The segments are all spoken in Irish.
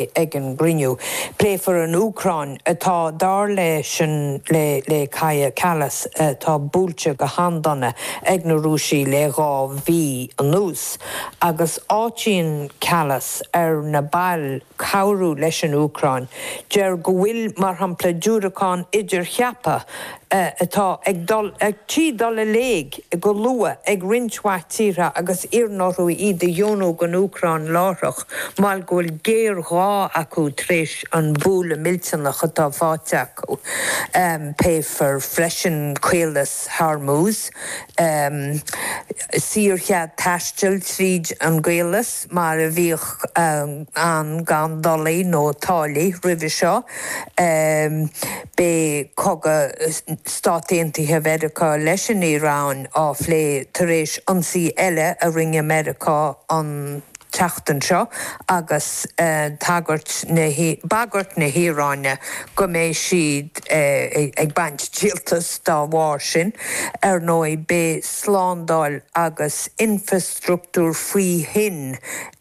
Ag an gcruinniú, pléifear an Úcráin, atá, dar leis an le Kaja Kallas, atá buailte go han-dona ag na Rúisigh le dhá mhí anuas, agus áitíonn Kallas ar na bail cabhrú leis an Úcráin. Deir sí go bhfuil, mar shampla, diúracáin idircheaptha, atá ag dul trí dul i léig go luath ag roinnt mhaith tíortha agus iarrann orthu iad a dheonú don Úcráin láithreach, mar gheall go bhfuil géarghá acu tar éis an bualadh millteanach atá faighte acu. Pléifear freisin Caolas Hormuz, saorchead taistil tríd an gcaolas. mar a bhíodh ann gan dolaí nó táillí roimhe seo. Beidh cogadh Stát Aontaithe Mheiriceá leis an Iaráin á phlé tar éis ionsaí eile a rinne Meiriceá an tseachtain seo agus tagairt na, bagairt na hIaráine go mbeidh siad ag baint díoltas dá bharr sin. Ar ndóigh beidh slándáil agus, struchtúr faoi thoinn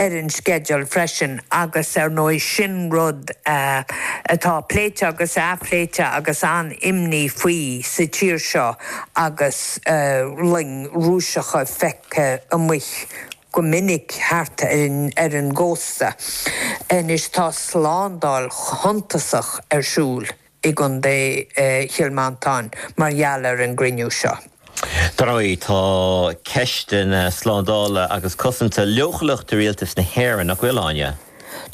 ar an sceideal freisin agus ar ndóigh sin rud atá pléite agus athphléite agus an-imní faoi sa tír seo agus loing Rúiseacha feicthe amuigh go minic thart ar an gcósta. Anois tá slándáil shuntasach ar siúl. i gContae Chill Mhantáin mar gheall ar an gcruinniú seo. Dar ndóigh, tá ceisteanna slándála agus cosanta leochaileach do rialtas na hÉireann, nach bhfuil, Áine?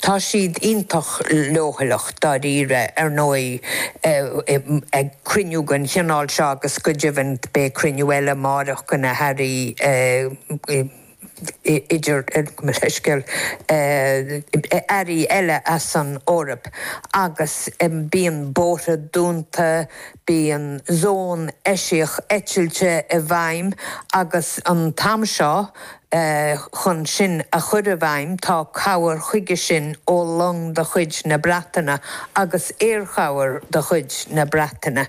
Tá siad iontach leochaileach, dáiríre. Ar ndóigh, ag cruinniú den chineál seo agus go deimhin beidh cruinniú eile amáireach do na hairí, idir leithscéal, airí eile as an Eoraip agus bíonn bóithre dúnta, bíonn zón eisiach eitilte i bhfeidhm agus an t-am seo chun sin a chur i bhfeidhm tá cabhair chuige sin ó long de chuid na Breataine agus aerchabhair de chuid na Breataine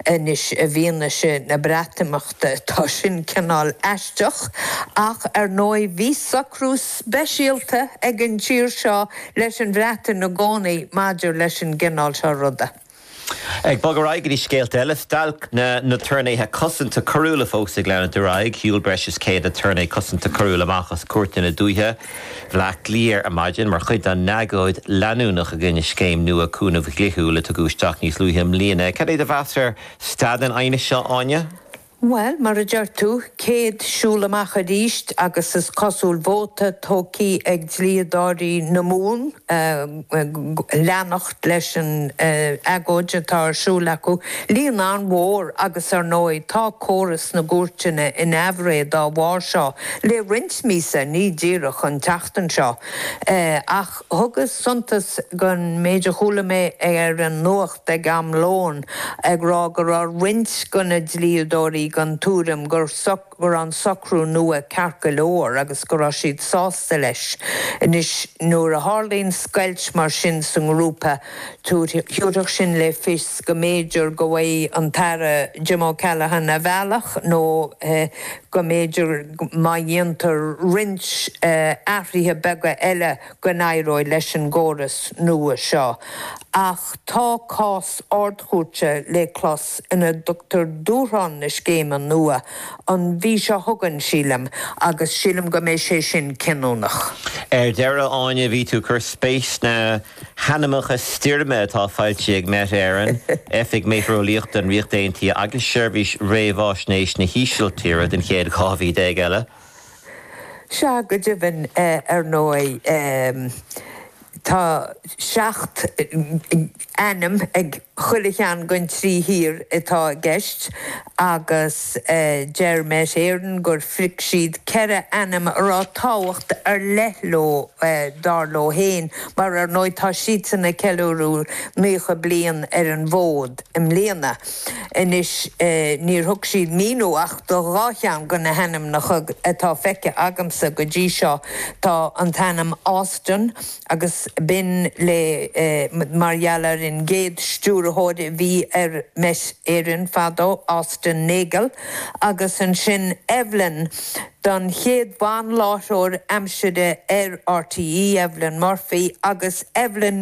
anois i bhfianaise na Breatimeachta. Tá sin cineál aisteach, ach ar ndóigh bhí socrú speisialta ag an tír seo leis an Bhreatain i gcónaí maidir leis an gcineál seo ruda. Ag bogadh ar aghaidh go dtí scéalta eile, stailc na n-aturnaetha cosanta coiriúla fós ag leanúint ar aghaidh. Shiúil breis is 100 aturnae cosanta coiriúil amach as cúirteanna dúiche Bhleá Cliath ar maidin mar chuid dá n-agóid leanúnach i gcoinne scéim nua cúnaimh dhlíthiúil a tugadh isteach níos luaithe i mbliana. Cad é do mheas ar Stad an aighneas seo, Áine. Bhuel, mar a deir tú, céad siúl amach aríst agus is cosúil vóta tugtha ag dlíodóirí na Mumhan leanacht leis an agóid atá ar siúl acu. Líon an-mhór agus ar ndóigh tá córas na gcúirteanna in aimhréidh dá bharr seo le roinnt míosa, ní díreach an tseachtain seo. Ach thugas suntas don méid a chuala mé ar an ag am lóin ag rá go raibh roinnt de na dlíodóirí den tuairim go raibh an socrú nua ceart go leor agus go raibh siad sásta leis. Anois, nuair a tharlaíonn scoilt mar sin sa ngrúpa, thiúrfadh sin le fios go mb'fhéidir go bhfaighidh an tAire Jim O'Callaghan a bhealach nó go mb'fhéidir má dhéantar roinnt athruithe beaga eile, go n-éireoidh leis an gcóras nua seo ach tá cás Ard-Chúirte le clos ina dtugtar dúshlán na scéime nua an mhí seo chugainn, sílim, agus sílim go mbeidh sé sin cinniúnach. Ar deireadh, Áine, bhí tú ag cur spéis sna hainmneacha stoirme atá foilsithe ag Met Éireann, Oifig Méiteareolaíochta an Ríocht Aontaithe agus Seirbhís Réamháisnéis na hÍsiltíre don chéad 12 mhí eile. Sea, go deimhin, ar ndóigh, tá seacht n-ainm ag chuile cheann den trí thír atá i gceist agus deir Met Éireann gur phrioc siad ceithre ainm a raibh tábhacht ar leith leo, dar leo fhéin, mar ar ndóigh tá siadsan ag ceiliúradh naocha bliain ar an bhfód i mbliana. Anois, níor thug siad míniú ach do dhá cheann de na hainmneacha atá feicthe agamsa go dtí seo. Tá an t-ainm Austen agus b'in le mar gheall ar an gcéad stiúrthóir a bhí ar Met Éireann fadó, Austen Nagle, agus ansin Evelyn don chéad bhan-láithreoir aimsire ar RTÉ, Evelyn Murphy, agus Evelyn.